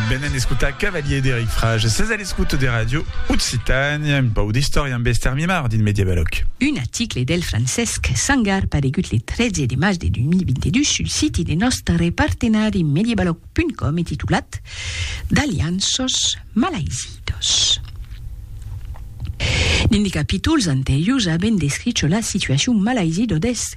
Venen d'escotar Cavalier d'Eric Frage. Ses a l'escoute de Radio Occitània, un pau d'istòria amb Esther Mimard dins Mediavalòc. Un article del Francesc Sangar paregut le 13 de mas de 2022 sul siti de nòstre partenari Mediavalòc.com e titulat D'alianços malaizidos. Dins de capítols anteriors avèm descricho la situacion malaizido deth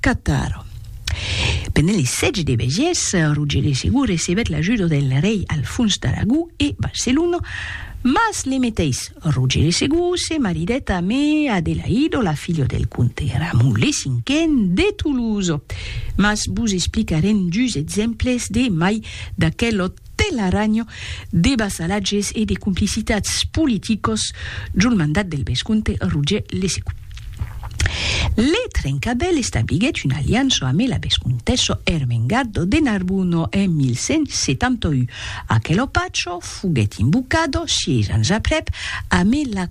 Cataro. Pendent li sètge de Bègies, Roger de Segur recebèt l'ajuda del rei Alfons d'Aragó e Barcelona, mas le meteis Roger de Segur se maridèt amé Adelaido, la filha del comte Ramon le Cinquen de Tolosa. Mas vos explicarem dus exemples de mai d'aquel òt. Telaranho de vassalatges e de complicitats politicos jol mandat del vescomte Roger Lessegut. Le Trencabèl establiguèt una aliança amé la vescomtessa Ermengarda de Narbona en 1171. Aquelo pacho foguèt invocado sièis ans aprèp amé la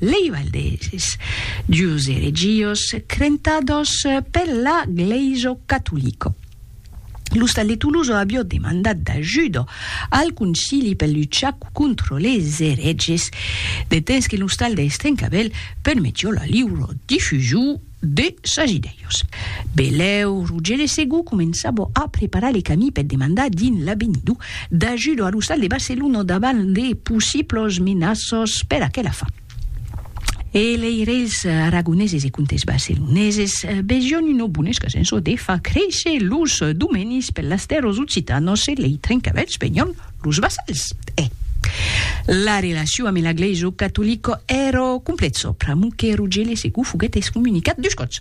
lei valdeses, dus eregios crentados per la Glèiso Catolico. L'ostal de Toloso avió demandat d'ajudo al concili per luchar contro les ereges, de temps que l'ostal de Estrencavèl permetió la liuro difusiu de sas idèios. Belèu, Rogere Segú començava a preparar le camí per demandar dins l'Avenido d'ajudo a l'ostal de Barcelona davant de possiblos menaços per aquela fin. E lei reis aragoneses e comtes barceloneses vesión una bona escasença de far créisser los domenis per las tèrras occitanos e lei trencavèlhs venión Los vassals, e. La relacion ame la glèisa catolica èra complèxa, pr'amor que Rogèle Segou foguèt excomunicat dus còps,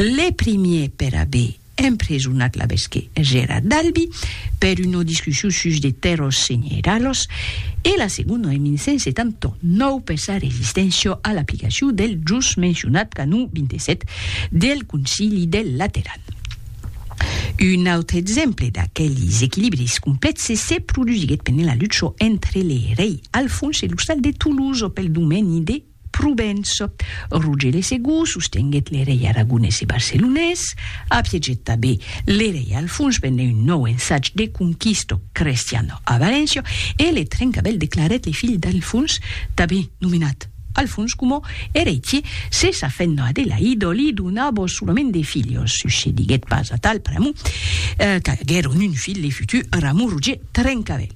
le primier per aver empresonat l'abesqué Gérard d'Albi per una discussion sus de tèrras senheralas e la segona en 1179 per sa resisténcia a l'aplicacion del just mencionat canon 27 del Concili del Lateran. Un autre exemple d'aquelis equilibris complèxes se produsiguèt pendent la lucha entre le rei Alfons e l'ostal de Toulouse pel domeni de Provença. Roger le Segur sostenguèt le rei aragonés e barcelonés, apiegèt tanben le rei Alfons pendent un nòu ensatge de conquista crestiana a Valéncia e le Trencavèl declarèt le filh d'Alfons tanben nomenat Al fons coma eretie, se sa fenda de l'aido li donabo solament de filhos, succediguèt pas atal pr'amor qu'aguèron un filh de futur Ramon Roger Trencavèl.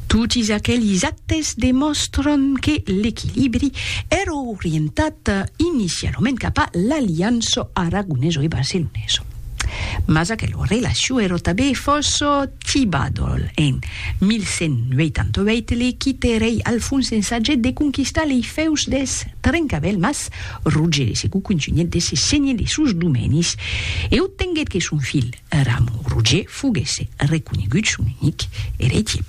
Totis aquelis actes demòstran que l'equilibri èra orientat inicialament cap a l'aliança aragoneso e barceloneso. Mas aquela relacion èra tanben fòrça Tibadol en 1188 li quite rei Alfons ensagèt de conquistar lei fèus deth Trencavèl mas Roger de Segou contunhèt de se senher de sos domenis e obtenguèt que son filh Ramon Roger foguèsse reconegut son unic eretier.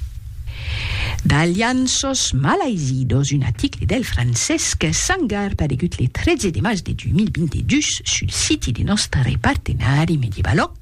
D'Alianços malaisidós, un aticle del Francesc Sangar paregut le 13 de març de 2022 sul siti de nòstre partenari Medievalog.